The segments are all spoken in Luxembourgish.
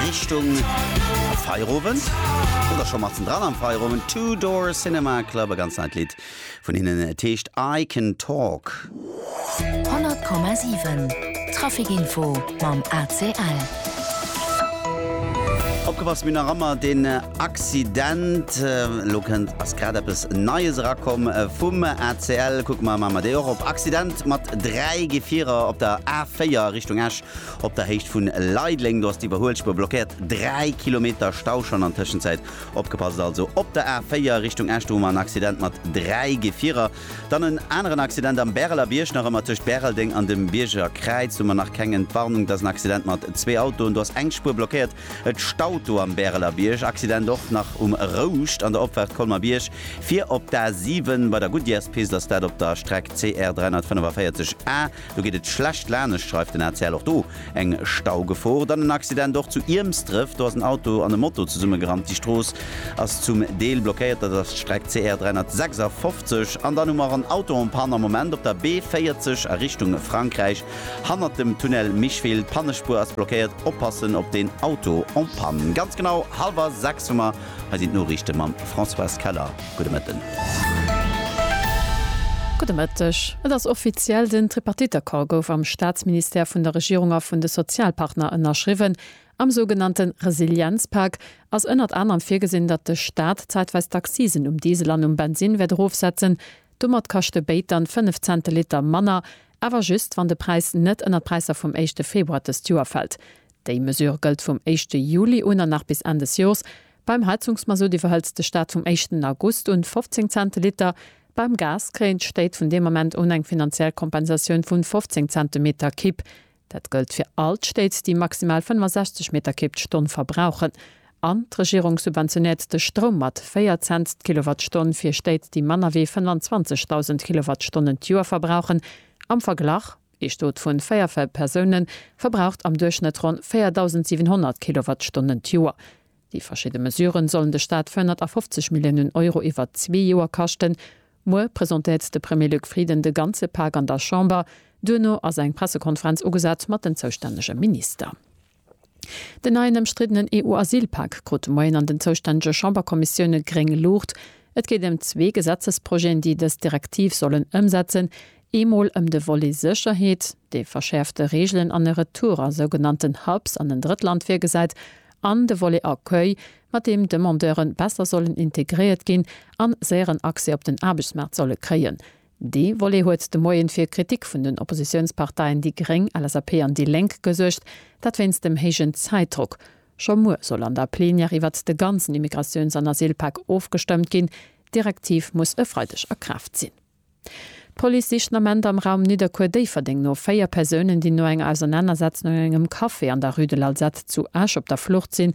Richtung Feierowend oder scho matzen dran am Feierowend. Two Door Cinema Club, e ganz neit Lidd vun hinnen, et heescht I Can Talk. 100,7 Traficinfo mam ACL. Opgepasst, mir hunn nach ëmmer deen Accident. Elo kënnt, ass grad eppes Neies erakomm vum ACL. Kucke mer, maache mer déi och op. Accident mat dräi Gefierer op der A4 Richtung Esch. Op der Héicht vun Leideleng, do ass d'Iwwerhuelspuer blockéiert, 3 Kilometer Stau schonn an Tëschenzäit. Opgepasst also op der A 4 Richtung Esch, do hu mer en Accident mat 3 Gefierer. Dann en aneren Accident am Bäreler Bierg, nach ëmmer tëscht Bäreldeng an dem Bierger Kräiz hu mer nach keng Entwarnung. Et ass en Accident mat zwee Autoen, do ass eng Spuer blockéiert. Et staut do am Bäreler Bierg. Accident och nach um Rouscht an der Opfaart Colmer Bierg fir op d'A 7 bei der Goodyears Pist, ass dat op der Streck CR 345A. Do geet et schlecht laanescht, schreift den ACL. Och do eng Staugefor. Dann en Accident och zu Iermsdref. Do ass en Auto an e Moto zesummegerannt. Déi Strooss ass zum Deel blockéiert. Dat ass d'Streck CR 356. An dann hu mer en Auto en panne am Moment op der B40 a Richtung Frankräich, hannert dem Tunnel Micheville. D'Pannespuer ass blockéiert. Oppassen op den Auto en panne. Ganz genau hallwer sechs hu mer Hei sinn d'Noriichte mam Françoise Keller. Gudde Mëtten. Gudde Mëtteg. Et ass offiziell, Den Tripartite-Accord gouf am Staatsministère vun der Regierung a vun de Sozialpartner ënnerschriwwen. Am sougenannte Resilienzpak ass ënnert anerem virgesinn, datt de Staat zäitweis d'Accisen um Diesel an um Bensinn wäert erofsetzen. Domat kascht de Béit dann 5 Cent de Liter manner, awer just, wann de Präis net ënner d'Präisser vum éischte Februar dëst Joer fält. Déi Mesure gëllt vum éischte Juli un an nach bis Enn des Jors. Beim Heizungsmazout iwwerhëltz de Staat vum éischten August un 15 Cent de Liter. Beim Gas kréien d'Stéit vun deem Ament un eng finanziell Kompensatioun vun 15 Cent de Meter Kibb. Dat gëllt fir all d'Stéit, déi maximal 65 Meter Kibb d'Stonn verbrauchen. An d'Regierung subventionéiert de Stroum mat 4 Cent d'Kilowattstonn fir Stéit, déi manner wéi 25.000 Kilowattstonnen d'Joer verbrauchen. Am Verglach. Ee Stot vun 4 Persounen verbraucht am Duerchschnëtt ronn 4.700 Kilowattstonnen d'Joer. Déi verschidde Mesuren sollen de Staat 450 Milliounen Euro iwwer zwee Joer kaschten. Muer presentéiert de Premier Luc Frieden de ganze Pak an der Chamber. Duerno ass eng Pressekonferenz ugesat mat den zoustännege Minister. Den neien ëmstriddenen EU-Asylpak krut de Moien an den zoustännege Chamberkommissioune gréng Luucht. Et geet ëm zwee Gesetzesprojeten, déi dës Direktiv sollen ëmsetzen, eemol ëm de Volet Sécherheet, dee verschäerfte Reegelen an e Retour a sougenannten Hubs an en Drëttland virgesäit, an de Volet Accueil, mat deem Demandeure besser sollen integréiert ginn a séieren Accès op den Aarbechtsmaart solle kréien. Dee Volet huet de Moien fir Kritik vun den Oppositiounsparteien déi gréng, LSAP an déi Lénk gesuergt, dat wéinst dem héijen Zäitdrock. Scho muer soll an der Plenière iwwert de ganzen Immigratiouns an Asylpak ofgestëmmt ginn. D'Direktiv muss e Freideg a Kraaft sinn. D'Police sicht den Ament am Raum Nidderkuer-Déifferdeng no véier Persounen, déi no enger Ausernanersetzung an engem Café an der Rue de l'Alzate zu Esch op der Flucht sinn.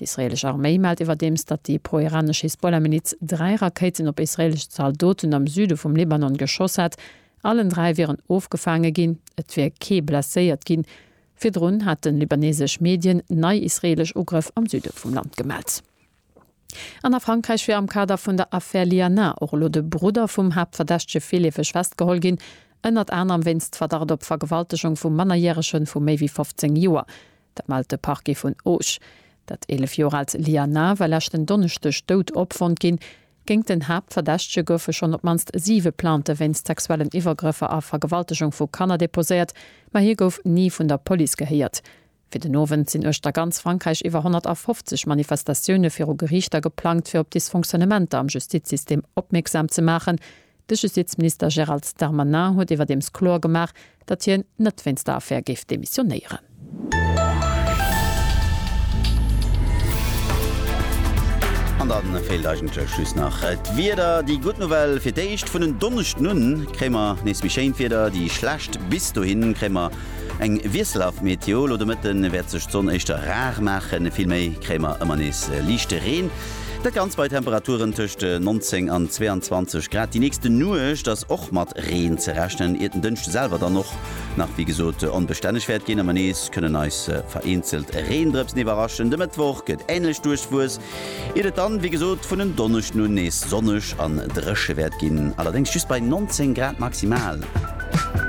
D'israeelesch Arméi mellt iwwerdeems, datt déi pro-iranesch Hisbollah-Miliz dräi Rakéiten op israeelesch Zaldoten am Süde vum Libanon geschoss hätt. Allen dräi wieren ofgefaange ginn, et wier kee blesséiert ginn. Virdrun haten libaneesesch Medien nei israeelesch Ugrëff am Süde vum Land gemellt. An a Frankräich wier am Kader vun der Affär Lianin och elo de Brudder vum Haaptverdächtege virleefeg festgeholl ginn, ënnert anerem wéinst Verdacht op Vergewaltegung vu Mannerjärege vu méi wéi 15 Joer. Dat mellt de Parquet vun Auch. Dat 11 Joer aalt Liana war leschten Donneschdeg dout opfonnt ginn. Géingt den Haaptverdächtege goufe schonn op d'mannst siwe Plainte wéinst sexuellen Iwwergrëffer a Vergewaltegung vu Kanner deposéiert, ma hie gouf ni vun der Police gehéiert. Fir den Owend sinn uechter ganz Frankräich iwwer 150 Manifestatioune viru Geriichter geplangt, fir op Dysfonctionnementer am Justizsystem opmierksam ze maachen. De Justizminister Gérald Darmanin huet iwwerdeems kloer gemaach, datt hien net wéinst der Affär géif demissionéieren. An dann feelt eigentlech just nach d'Wieder. Déi gutt Nouvelle, fir d'éischt vun en Donneschden un kréie mer nees méi schéint Wieder, déi schlecht, bis dohin kréie mer eng wiesselhaft Météo. Lo de Mëtten wäert sech d'Sonn éischter rar maachen, vill méi kréie mer ëmmer nees liichte Reen. Dat Ganzt bei Temperaturen tëscht 19 an 22 Grad. Déi nächste Nuecht ass och mat Reen ze rechnen, iert den Dënschde selwer dann och nach wéi gesot onbestänneg wäert ginn a mer nees kënnen eis vereenzelt Reendrëpsen iwwerraschen. De Mëttwoch gëtt änlech duerchwuess, iert et dann wéi gesot vun en Donneschden un nees sonneg an dréche wäert ginn, allerdéngs just bei 19 Grad maximal.